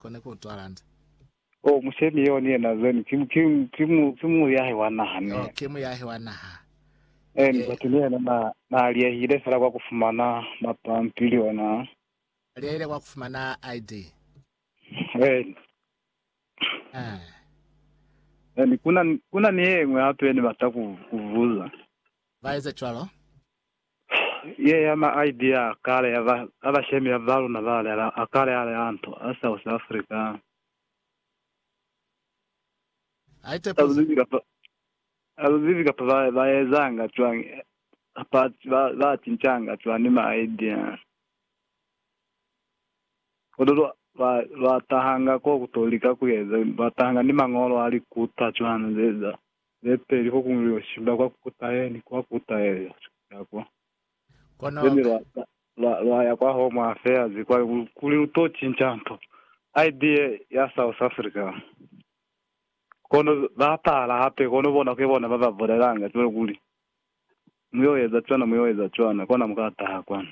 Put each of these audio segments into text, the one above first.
kona ku utwa landa. Oh, mushemi yeo ni yena zeni, ki, ki, ki, mu, ki muyahi wa naha, ni. Oh, ki muyahi wa naha. Ee, ni batu ni yena na, na aliyehile fela kwa kufumana mapampili ona. Aliyehile kwa kufumana ID. Ee. Ah. Ee, kuna, kuna ni yeñwi hape yeni bata ku, ku buza. Ba eze cwalo. Yea ma idea a kale ya ba ya bashemi ya ba luna ba lela a kale ale a nto a South Africa. Ai te Alu peza. zibi kapa alu zibi kapa ba ba ezanga cwang kapa ba ba cincanga cwang ni ma idea. Kono lwa lwa lwa tahanga ko ku to lika ku eza lwa tahanga ni mangolo a likuta cwang zeza. Ze peli ho kuñwi lyo shimba kwa kutahe ni kwa kutahe lyo ya kwa. Kono Zeni lwa, lwa, lwa ya kwa Home Affairs kwa ku, kuli lu to cinca nto. ID ye ya South Africa. Kono ba pala hape, kono bona ke bona ba ba bulelanga cwalo kuli, Mu yo eza cwana, mu yo eza cwana, kona mu ka taha kwanu.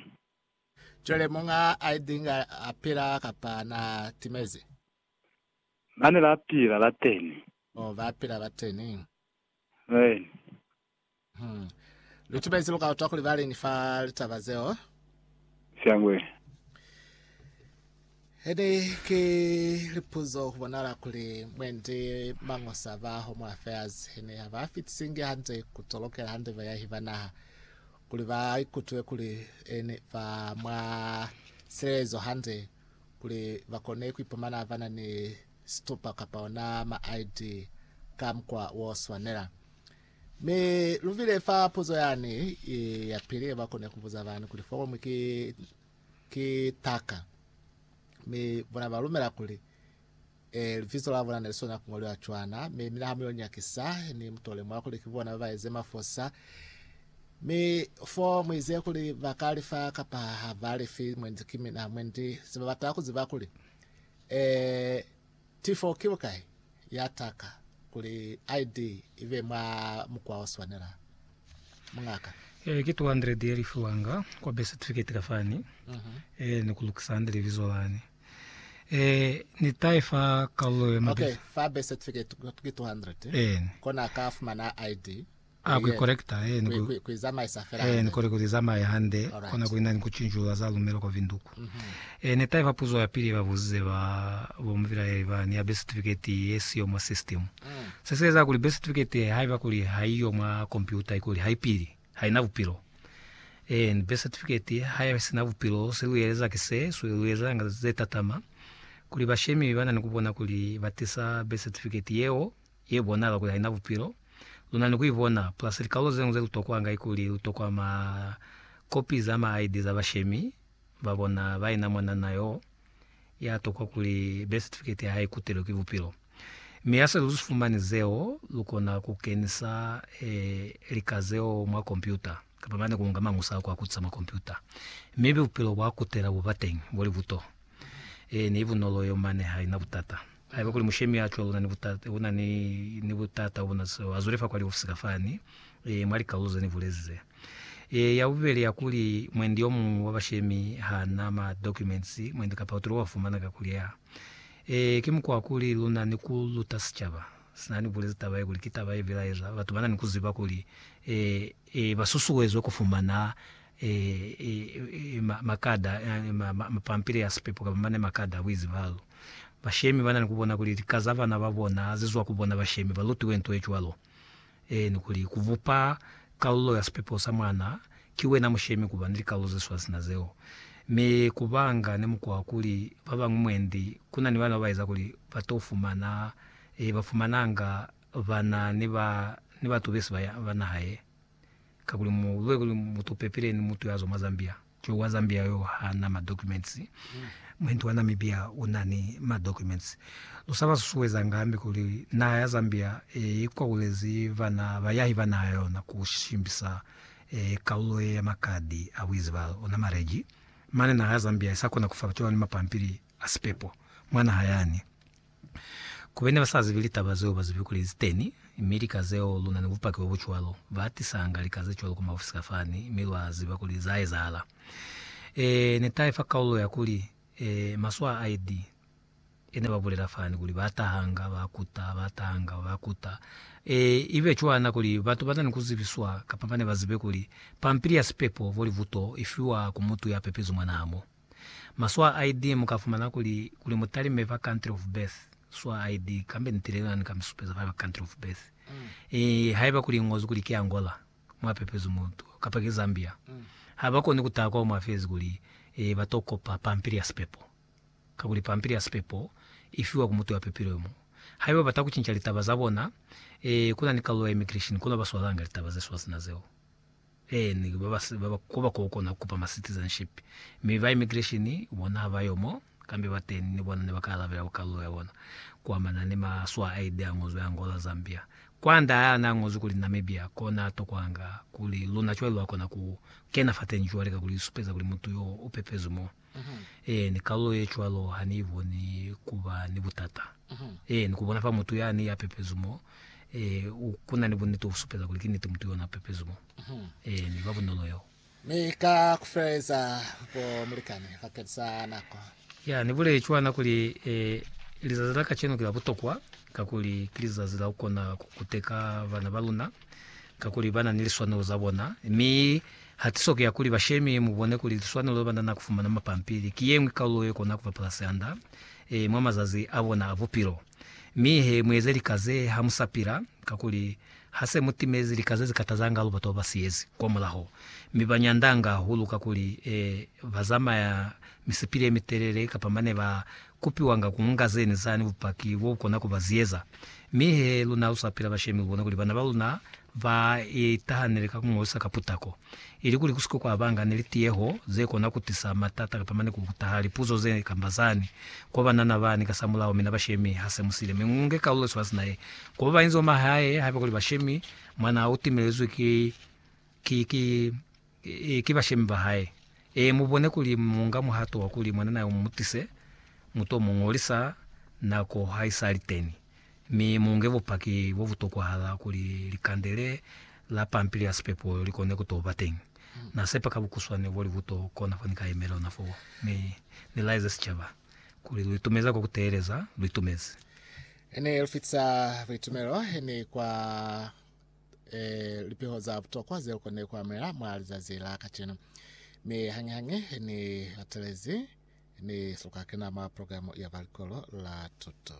Cwale muñ'a ID inga a pila kapa na timezi? Mane la pila, la teni. Mo ba pila ba teni. Rain. Hmm. Lu timezi lu ka utwa kuli ba lini fa litaba zeo? Syangwe. Hede ki lipuzo ku bonala kuli mwendi mangosa ba Home Affairs hene ha ba fitisingi hande ku tolokela hande bayahi ba naha kuli ba ikutwe kuli ene ba mwa silelezo hande kuli ba kone ku ipumana ba na ni situpa kapa ona ma-ID ka mukwa wo swanela. Mi lu bile fa puzo yani ye ya pili ye ba kone ku buza bani kuli foromu ki, ki taka. Mi bona ba lumela kuli, Eh, libizo la bona ne li swanela ku ngoliwa cwana, mi mina ha mu yo nyakisa, ni mu to lemuha kuli ki bona ba ba eze mafosa. Mi fo mu ize kuli ba ka li fa kapa ha ba li fi, mwendi ki mina, mwendi. Se ba bata ku ziba kuli, Ee, tifo ki bukai ya taka kuli ID ibe mwa mukwa o swanela, mungaka? Ee, ki 200 ye li fiwanga kwa birth certificate ka fani. Ee, ni ku lukisa hande libizo lani. Ee, ni ta i fa kalulo ye mabitso. Okay, fa birth certificate ki 200, Eeni. kona ka fumana ID. A ku ikolekta, he ni ku, he ni kole ku li zamaye hande, kona kuli nani ku cinculula za lumelo kwa vinduku. He ne taifa puzo ya pili ye ba buzize ba, bo mupilaeli ba ni ya birth certificate ye siyo mwa system. Se si eza kuli birth certificate ye, haiba kuli ha i yo mwa kompyuta, ikuli ha i pili, ha i na bupilo. He ni birth certificate ye, ha i si na bupilo, se lu eleza ki se, se lu ezanga ze tatama, kuli bashemi ba na ni ku bona kuli ba tisa birth certificate yeo, ye bonala kuli haina bupilo, luna ni kuibona plus likalolo zeñwi zelutokwanga ikuli lutokwa ma kopi za ma ID za bashemi babona baina mwanana yoo yatokwa kuli birth certificate yahae ikutelwe ki bupilo. Mi hase luzifumani zeo, lukona kukenisa lika zeo mwa kompyuta kapa mane kuunga mañusa ako akutisa mwa kompyuta, mi bupilo bwakutela bubateñi bolibuto. Ee, nibunolo yo mane haina butata. Haiba kuli mushemi ya cwalo una ni butata, una ni, ni butata bona, so azwele fa kwa liofisi ka fani, e, mwa likalolo ze ni bulezi ze. E, ya bubeli ya kuli, mwendi yo muñwi wa bashemi ha na ma documents, mwendi kapa utile wa fumana ka kuli ya. E, ki mukwa wa kuli luna ni ku luta sicaba. Sina ni bulezi taba ye kuli ki taba ye bilaeza batu bana ni ku ziba kuli, e, e, ba susuezwe ku fumana makada, mapampili a sipepo kamba mane makada a buizibalo. Bashemi ba na ni ku bona kuli lika za bana ba bona ha zi zwa ku bona bashemi ba lutiwe nto ye cwalo. Ee, ni kuli, ku bupa kalulo ya sipepo sa mwana ki wena mushemi ku ba ni likalulo ze swana sina zeo. Mi ku banga ni mukwa wa kuli ba bañwi mwendi ku na ni bana ba ba eza kuli ba t'o fumana, ee, ba fumananga bana ni ba, ni batu besi ba naha ye. kakuli mu be kuli mutu pepile ni mutu ya zwa mwa Zambia jo wa Zambia yo ha na ma documents muhintu wa Namibia u na ni ma documents lu sa ba susuweza nga hambi kuli naha ya Zambia e i kwakulezi vana bayahi ba naha ya yona ku shimbisa e kalulo ye ya makadi a buizibalu ona marriage mane naha ya Zambia i sa kona ku fa bato ba ni mapampili a sipepo mwa naha yani. Ku bene ba sa zibi litaba zeo, ba zibi kuli li teni, mi lika zeo lu na ni bupaki bo bu cwalo. Ba hatisanga lika ze cwalo ku maofisi ka fani, mi lwa ziba kuli za ezahala. E, ne tahe fa kaulo ya kuli, e, maswaa a ID, e ne ba bulela fani kuli ba tahanga, ba kuta, ba tahanga, ba kuta. E, i be cwana kuli batu ba na ni ku zibiswa, kapa ba ne ba zibe kuli, pampili ya sipepo, volivuto, i fiwa ku mutu ya pepezwi mwa naha mo. Maswa a ID Mu ka fumana kuli, kuli mu talime fa country of birth, swa ID, kambe ni tile lani ka mi supeza fa country of birth. I, haiba kuli i ñozwi kuli ki Angola, mwa pepezwi mutu, kapa ki Zambia, ha ba koni ku taha kwao mwa fezi kuli, e, ba to kopa pampili ya sipepo. Kakuli pampili ya sipepo i fiwa ku mutu ya pepilwe mo. Haiba ba ta ku cinca litaba za bona, e, ku na ni kalulo ya immigration kono ba swalanga litaba ze swa sina zeo. Ee, ni ba ba ba ba koba ko kona ku kupa ma citizenship, mi ba immigration bona ha ba yo mo, kambe ba teni ni bona ne ba ka alabela ku kalulo ya bona ku amana ni ma swa a ID a ngozwi Angola, Zambia. Kwanda ha na ngozwi kuli Namibia, ko na tokwanga kuli luna cwale lwa kona ku kena fateñi cwale ka kuli li supeza kuli mutu yo u pepezwi moo. Ee, ni kalulo ye cwalo ha ni iboni ku ba ni butata. Ee, ni ku bona fa mutu yani ya pepezwi mo, ee, u, ku na ni buniti u supeza kuli ki niti mutu yona a pepezwi mo. Ee, ni ba bunolo yeo. Mi ka ku feleleza, bo mulikani, bakeni sa nako. Ya, ni buleli cwana kuli, ee, lizazi la kacenu ki la butokwa, kakuli ki lizazi la ku kona ku kuteka bana ba luna. kakuli bana ni liswanelo za bona, mi hatiso ki ya kuli bashemi mubone kuli liswanelo le banana kufumana mapampili ki yeñwi kalulo ye kona kuba pulasihanda e mwa mazazi a bona a bupilo. Mi he mueze lika ze ha mu sa pila, kakuli hase mu timezi lika ze zikatazanga hahulu batu baba siyezi kwa mulaho, mi ba nyandanga hahulu kakuli e ba zamaya misipili ye mitelele kapa mane ba kupiwanga ku nga zene zani bupaki bo kona ku ba ziyeza. Mi he luna lu sapela bashemi bona kuli bana ba luna ba itahanele ka ku ngolisa ka putako, ili kuli ku si ke kwa ba nga ni litiyeho ze kona ku tisa matata kapa mane ku taha lipuzo ze kamba zani kwa banana bani kasamulaho. Mina bashemi ha se mu sile, mi mu nge kalulo sibaka sina ye ku ba bainzi ba mahae. Haiba kuli bashemi mwana u timelezwi ki, ki, ki Ee, ki bashemi ba hae. Ee, mubone kuli muunga muhato wa kuli mwananaa yo mumutise, muto muñolisa nako haisali teni, mi muunge bupaki bobutokwahala kuli likande le la pampili ya sipepo likone kuto ba teni. Na sepa ka bukuswane boli buto kona fo ni ka yemela ona foo, mi Ni laeze sicaba kuli lu itumeza kwa kuteeleza, lu itumeze. Ni lufitisa buitumelo ni kwa e, lipiho za butokwa zeo kone kuamela mwa lizazi la kacenu. Mi hañihañi ni latelezi, ni si lukakena mwa programu ya ba likolo la tuto.